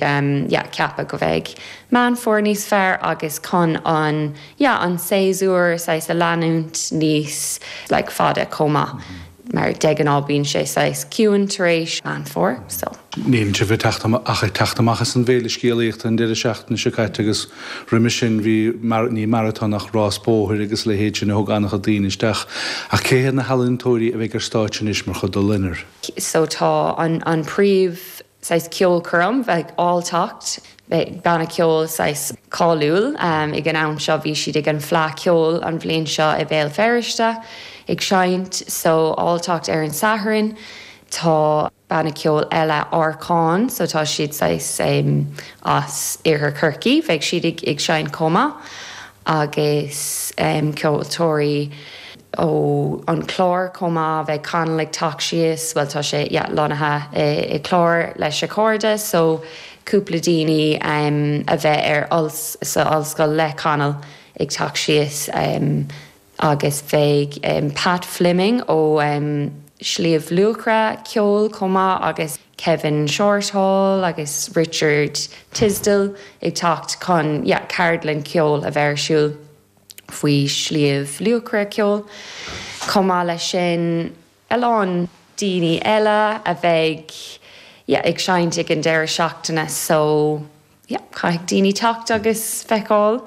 yeah ceapadh go bheidh Meán Fómhair níos fearr agus chun an yeah an séasúr saghas a leanúint níos like fada chomh maith mar de ghnáth bíonn sé saghas ciúin tar éis meán fómhair so. Níl sibh ag teacht ach ag teacht amach as an bhféile scéalaíochta an deireadh seachtaine seo caite agus roimhe sin bhí mar ní maratón ach rás bóthair agus a leithéid sin a thug an-chuid daoine isteach ach cé hiad na healaíontóirí a bheidh ar stáitse anois mar chuid de Loinnir? so tá an an príomh. saghas ceolchoirm beidh Allt teacht banna ceoil saghas cáiliúil ag an am seo bhí siad ag an Fleadh Cheoil an bhliain seo i Béal Feirste ag seinnt so all teacht ar an Satharn tá banna ceoil eile Arcán so tá siad saghas as iarthar Chorcaí beidh siad ag seinnt chomh maith agus ceoltóirí ó An Clár chomh maith. Beidh Conall ag teacht síos, bhuel tá sé, yeah, lonnaithe i Clár leis a chairde so cúpla daoine a bheith ar, sa ollscoil le Conall ag teacht síos agus beidh Pat Fleming ó Shliabh Luachra ceoil chomh maith agus Kevin Shortall agus Richard Tisdall ag teacht chun, yeah, ceardlann cheoil a bheith ar siúl. faoi Shliabh Luachra ceoil. Chomh maith leis sin, a lán daoine eile a bheidh yeah ag seinnt ag an deireadh seachtaine so yeah caithfidh daoine teacht agus feiceáil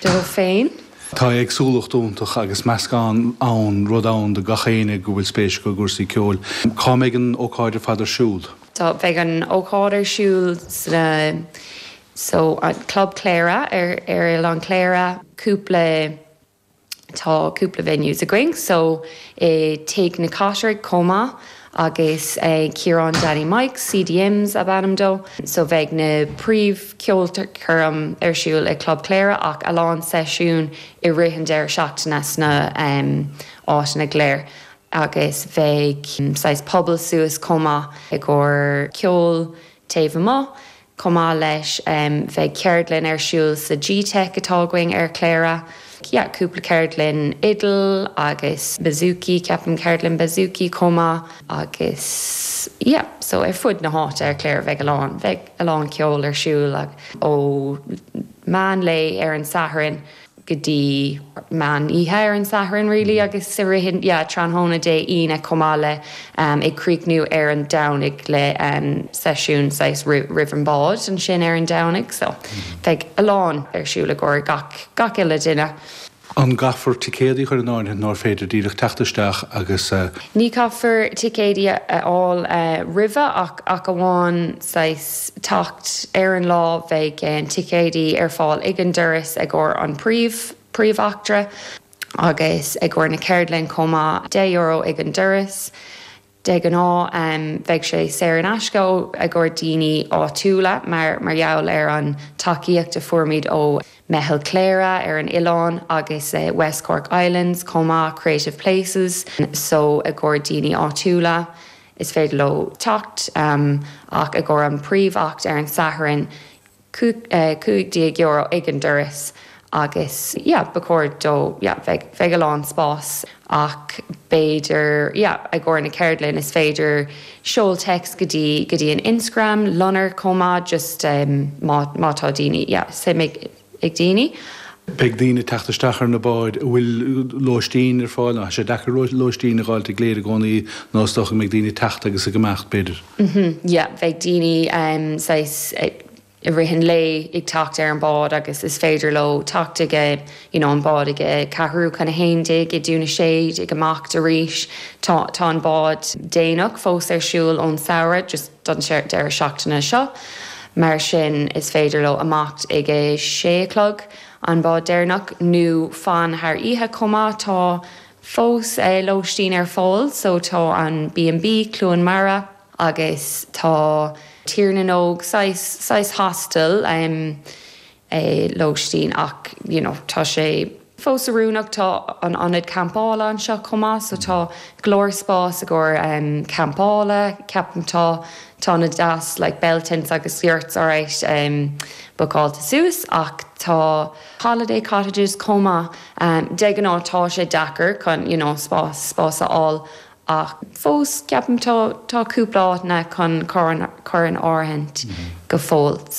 dóibh féin. Tá éagsúlacht iontach agus meascán ann, rud ann do gach éinne go bhfuil spéis acu i gcúrsaí ceoil. Cá mbeidh an ócáid ar fad ar siúl? Tá, beidh an ócáid ar siúl sna So an Club Chléire ar ar Oileán Chléire cúpla tá cúpla venues againn so i Tigh na gCoitireach chomh maith agus ag Ciarán Danny Mike, CDM's is ainm dó, so bheidh na príomh ceolchoirm ar siúl i Club Chléire ach a lán seisiún i rith an deireadh seachtaine sna em áiteanna go léir agus bheidh saghas puball suas chomh maith i gcomhair ceol taobh amuigh. Chomh maith leis bheidh ceardlann ar siúl sa G-Teic atá againn ar Chléire. Yeah cúpla ceardlann fidil agus bouzouki, ceapaim ceardlann bouzouki chomh maith agus yeah so ar fud na háite ar Chléire bheidh a lán, bheidh a lán ceol ar siúl ó mheán lae ar an Satharn. go dtí meán oíche ar an Satharn really agus i rith yeah tráthnóna Dé Aoine chomh maith le em ag críochnú ar an Domhnaigh le em seisiún saghas roimh roimh an bád ansin ar an Domhnaigh so bheidh a lán ar siúl i gcomhair gach gach uile duine. An gcaithfear ticéadaí a chur in áirithe nó an féidir díreach teacht isteach agus eh. Ní caithfear ticéadaí a fháil eh roimhe ach ach amháin saghas teacht ar an lá bheidh ticéidí ar fáil ag an doras i gcomhair an príomh príomhimeachta agus i gcomhair na ceardlainne chomh maith. Deich euro ag an doras. De ghnáth bheidh sé saor in aisce i gcomhair daoine áitiúla mar mar gheall ar an tacaíocht a fuaireamar ó Meitheal Chléire ar an oileán agus West Cork Islands chomh maith Creative Places so i gcomhair daoine áitiúla. is féidir leo teacht ach i gcomhair an príomhimeacht ar an Satharn, €15 ag an doras agus yeah ba chóir do yeah bheidh bheidh a lán spás ach b'fhéidir yeah i gcomhair na ceardlainn is féidir seol text go dtí go dtí an Instagram Loinnir chomh maith just má má tá daoine yeah suim ag daoine. Beidh daoine ag teacht isteach ar na báid a bhfuil lóistín ar fáil ann. Tá sé deacair lóistín a dh'fháilt i gCléire i gcónaí nó is dócha go mbeidh daoine ag teacht agus ag imeacht, b'fhéidir. Yeah, bheidh daoine saghas i rith an lae ag teacht ar an bhád agus is féidir leo teacht ag a, you know, an bád ag a ceathrú chun a haon déag, i nDún na Séad, ag imeacht arís. Tá an bád déanach fós ar siúl ón samhradh. don deireadh seachtaine seo, mar sin is féidir leo imeacht ag a sé a chlog, an bád deireanach, nó fan thar oíche chomh maith, tá fós lóistín ar fáil, so tá an B&B, Cluain Mara, agus tá Tír na nÓg, saghas, saghas hostel, em. lóistín ach you know tá sé fós oiriúnach tá an ionad campála anseo chomh maith so tá go leor spás i gcomhair em campála ceapaim tá tá na deas like bell tents agus yurts alright em bookáilte suas ach tá holiday cottages chomh maith em de ghnáth tá sé deacair chun you know spás spás a fháil ach fós ceapaim tá tá cúpla áiteanna chun cur in áirithint go fóill.